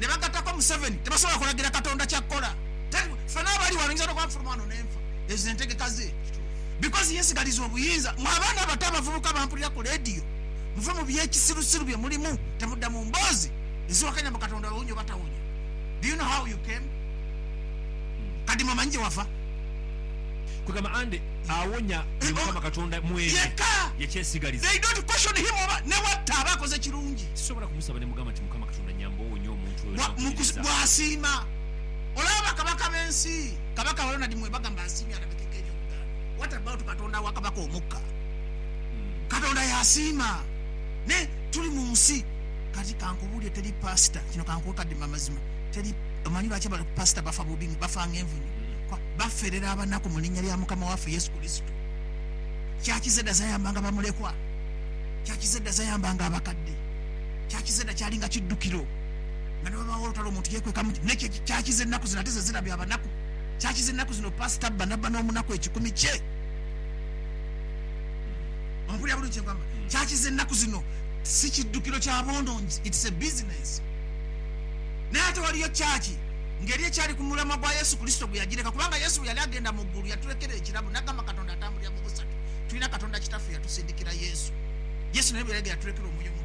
ne bagattaku Museveni tebasobola kulagira Katonda kya kukola. Teri ffena abali wano nyinza n'okuba nfuluma wano ne nfa. Ezo ze ntegeka ze. Because yeesigaliza obuyinza. Mmwe abaana abato abavubuka abampulira ku leediyo, muve mu by'ekisirusiru bye mulimu. Temudda mu mboozi eziwakanya mbu Katonda awonya oba tawonya. Do you know how you came? Kadima omanyi gye wava? Kwegamba ande awonya ye Mukama Katonda mu ebyo Yekka. ye kyesigaliza. They don't question him oba ne bw'atta aba akoze kirungi. Sisobola kumusaba ne mugamba nti Mukama. bw'asiima. Olaba bakabaka b'ensi, kabaka wa yona di mwebagha mbu asiimye alabikeko eri Obuganda. What about Katonda wa kabaka omukka? Katonda y'asiima. Naye tuli mu nsi. Kati kankubuulire, teri pastor, kino kankuwe kadima amazima, teri, omanyi lwaki aba pastor bafa bubi, bafa ng'envunyu? Kuba baferera abanaku mu linnya lya Mukama waffe Yesu Kurisito. Church ze dha zayambanga bamulekwa. Church ze dha zayambanga abakadde. kya kiza edha kyali nga kiddukiro, nga newabaawo olutalo omuntu yekweka mu nekye kya kiza ennaku zino ate zezira bya banaku kya kiza ennaku zino pastor bba nabba n'omunaku ekikumi kye ompulira bulungi kye nkwamba kya kiza ennaku zino si kiddukiro kya bwonongi it's a business naye ate waliyo church nga eri ekyali ku mulamwa gwa Yesu Kurisito gwe yagireka kubanga Yesu bwe yali agenda mu ggulu yatulekera ekirabo nagamba Katonda atambulira mu busatu tulina Katonda kitaffe yatusindikira Yesu Yesu naye bwe yali yaturekera omwoyo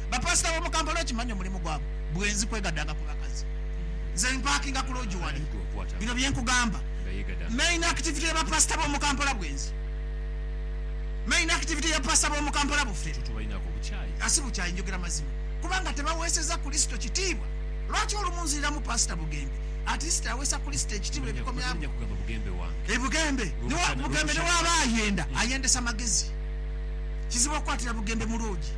Bapasita b'omu Kampala okimanyi omulimu gwabwe bwenzi kwegadanga ku bakazi. Nze mpakinga ku loogi wali. Bino bye nkugamba, main activity ya bapasita b'omu Kampala bwenzi. Main activity ya pasita b'omu Kampala bufere. A Si bukyayi, njogera mazima. Kubanga tebaweeseza Kurisito kitiibwa. Lwaki olumu nziriramu Pasita Bugembe? At least aweesa Kurisito ekitiibwa ebikomya bwe. E Bugembe, Bugembe ne bw'aba ayenda, ayendesa magezi. Kizibu okukwatira Bugembe mu loogi.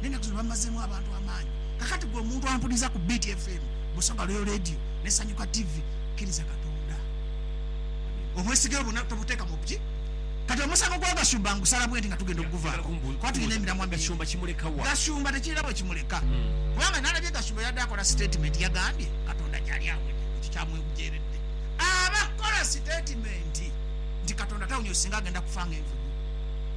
N'enaku zino bamazeemu abantu amaani. Kakati gwe omuntu ampuliza ku Beat FM, Busoga Royal Radio ne Sanyuka TV, kiriza Katonda. Obwesige bwo tobuteeka mu bgy. Kati omusango gwa Gashumba ngusala bwenti nga tugenda okuguvaako kuba tulina emiramwa mingi. Gashumba tekirina wekimuleka kubanga nalabye Gashumba yabadde akola sitatimenti yagambye Katonda gyali awonye ekyo kyamwewjeeredde. Aba kukola sitatimenti nti Katonda tawonye oyo singa agenda kufa nga envubu.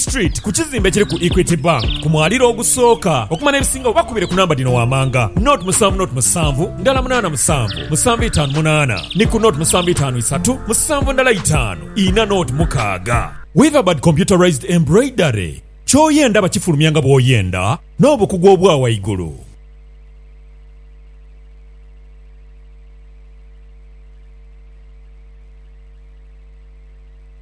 Street ku kizimbe ekiri ku Equity Bank ku mwaliro ogusooka. Okumanya ebisingawo bakubire ku namba dhino wammanga, naught musanvu naught musanvu ndala munaana musanvu musanvu itaanu munaana ni ku naught musanvu itaanu isatu musanvu ndala itaanu ina naught mukaaga. Weaverbird Computerized Embroidery, Ky'oyenda bakifulumya nga bw'oyenda n'obukugu obwa waigulu.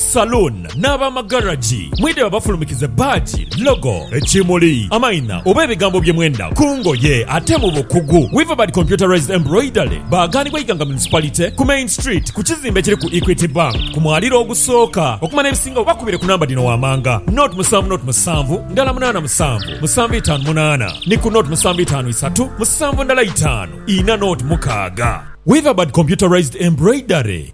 Saloon n'abamagaragi mwidhe babafulumikize bbaagi, logo, ekimuli, amaina oba ebigambo bye mwenda ku ngoye ate mu bukugu. Weaverbird Computerised Embroidery baaghanibwa Iganga Municipality ku Main Street ku kizimbe ekiri ku Equity Bank ku mwaliro ogusooka. Okumanya ebisingawo bakubire ku namba dhino wammanga, 0 musanvu 0 musanvu ndala munaana musanvu musanvu itaanu munaana ni ku 0 musanvu itaanu isatu musanvu ndala itaanu ina 0 mukaaga. Weaverbird Computerised Embroidery.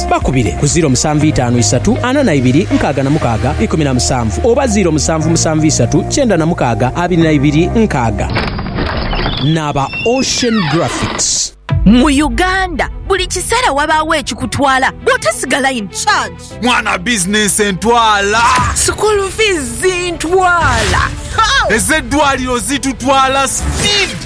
Bakubire ku ziiro musanvu itaanu isatu ana na ibiri nkaaga na mukaaga ikumi na musanvu oba ziiro musanvu musanvu isatu kyenda na mukaaga abiri na ibiri nkaaga. Naaba Ocean Graphics. Mu Uganda, buli kiseera wabaawo ekikutwala bw'otasigala in charge. Mwana bizinensi entwala. School fees zintwala. Ez'eddwaaliro zitutwala speed.